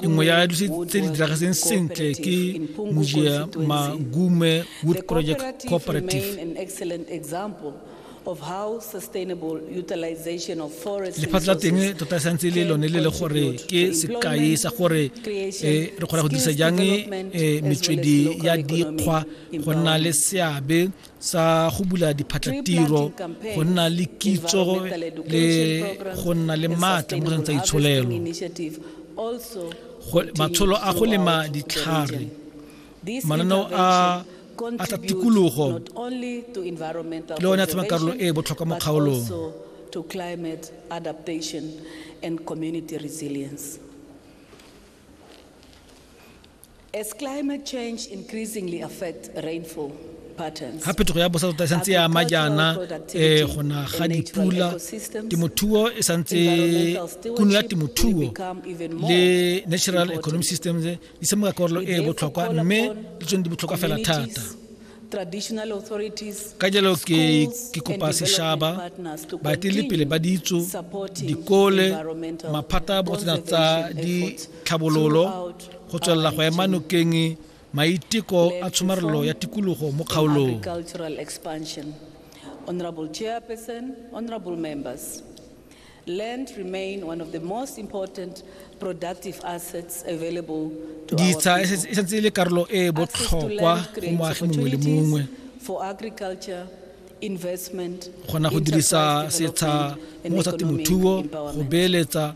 nngwe ya dilo tse di diragetseng sentle ke mojia magume wood project cooperative lefatshe la teng tota e santse le lone le le gore ke sekai sa gore eh, re kgona go dirisa jang eh, metswedi ya dikgwa go nna le seabe sa go bula diphatlatiro go nna le kitso le go nna le maatla mo tsa itsholelo matsholo a go lema ditlhare mananeo a a tsa tikologo le one a tshama karolo e e botlhokwa mo kgaolong to climate adaptation and community resilience. As climate change increasingly affects rainfall ga phetogo ya bosa tota e santse ya ama jaana um go na ga dipula temothuo e santse kuno ya temothuo le natural economic systems di semoka karolo e e botlhokwa mme le tsone di botlhokwa fela thata ka jalo ke kopa sešaba baeteledipele ba ditso dikole maphata a botsena tsa ditlhabololo go tswelela go ema nokeng maiteko a tshomarelo ya tikologo mo kgaolong Honorable Chairperson, honorable members, land remain one of the most important productive assets available to our ditsha e setse- e setse e le karolo e e Access to botlhokwa land go creates moagi mongwe le opportunities mongwe for agriculture, investment, go na go dirisa enterprise setsha development, and mo sa economic temothuo go empowerment. beeletsa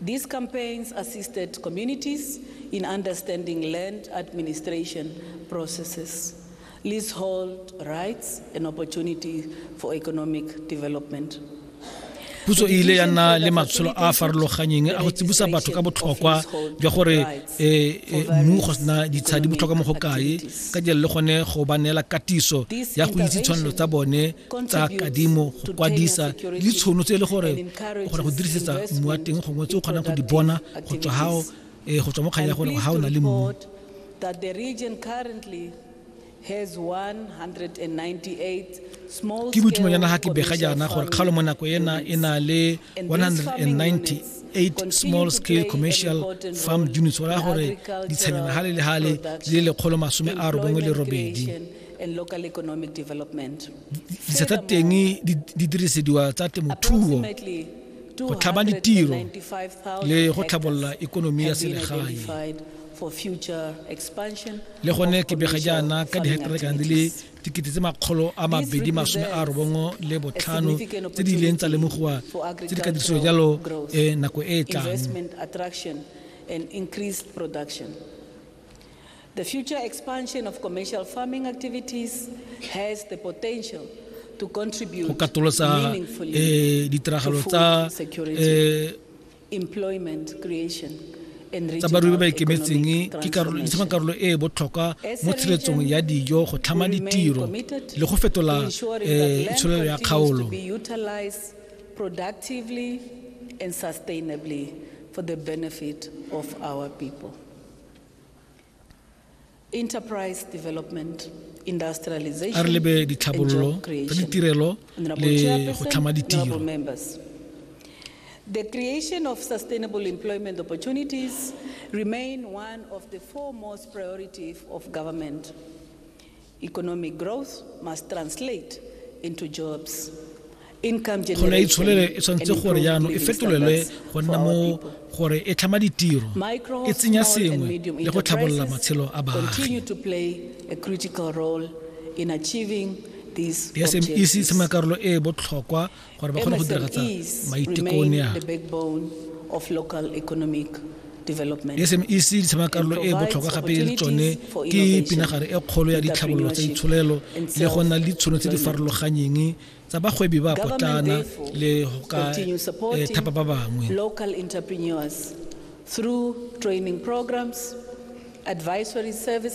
These campaigns assisted communities in understanding land administration processes, leasehold rights, and opportunity for economic development. puso e ile ya nna le matsholo a a farologanyeng a go tsibusa batho ka botlhokwa jwa gore eh, eh, mmu go sena ditshadi botlhokwa mo go kae ka jalo le gone go ba neela katiso ya go itse tshwanelo tsa bone tsa kadimo go kwadisa le ditshono tse e le gore o kgona go dirisetsa mmu wa teng gongwe tse o kgonang go di bona go tswa gao um eh, go tswa mo kgang ya gore ga o na le mmu ke boitumelo ya naga ke bega jaana gore kgalo mo nako ena e na le 190 eight small scale commercial farm units go raya gore ditshenyana ga le le gale di le lekgolo masome a robongwe le robedi and local economic development. Ditsela tsa teng di dirisediwa tsa temothuo go tlhaba ditiro le go tlhabolola ikonomi ya selegae le gone ke bega jaana ka diheketara kana di le dikete tse makgolo a mabedi masome a robongwe le botlhano tse di ileng tsa lemogiwa tse di ka dirisiwa jalo eh, nako e e tlang The future expansion of commercial farming activities has the potential to contribute go katolosa meaningfully eh, ditiragalo to tsa food security, eh, employment creation, and tsa regional barui ba ba ikemetseng economic ke karolo di tlhoma transformation. karolo e e botlhokwa As a mo tshiretsong region, ya dijo go tlhama we remain ditiro committed le go fetola to ensuring eh, that land tsholelo ya continues kgaolo to be utilized productively and sustainably for the benefit of our people. enterprise development a re lebe ditlhabololo tsa ditirelo le go tlhama ditiro The creation of sustainable employment opportunities remain one of the foremost priorities of government. Economic growth must translate into jobs. tlholo e itsholele e tshwanetse gore jaanong e fetolelwe go nna mo gore e tlhama ditiro e tsenya sengwe le go tlhabolola matshelo a baagi di-smes tshameka karolo e e botlhokwa gore ba kgone go diragatsa maiteko one a SMEC di tshema karolo e botlhokwa gape le tsone ke pinagare e kgolo ya ditlhabololo tsa itsholelo le go nna le ditshono tse di farologanyeng tsa bagwebi ba potlana le go ka eh, thapa ba bangwe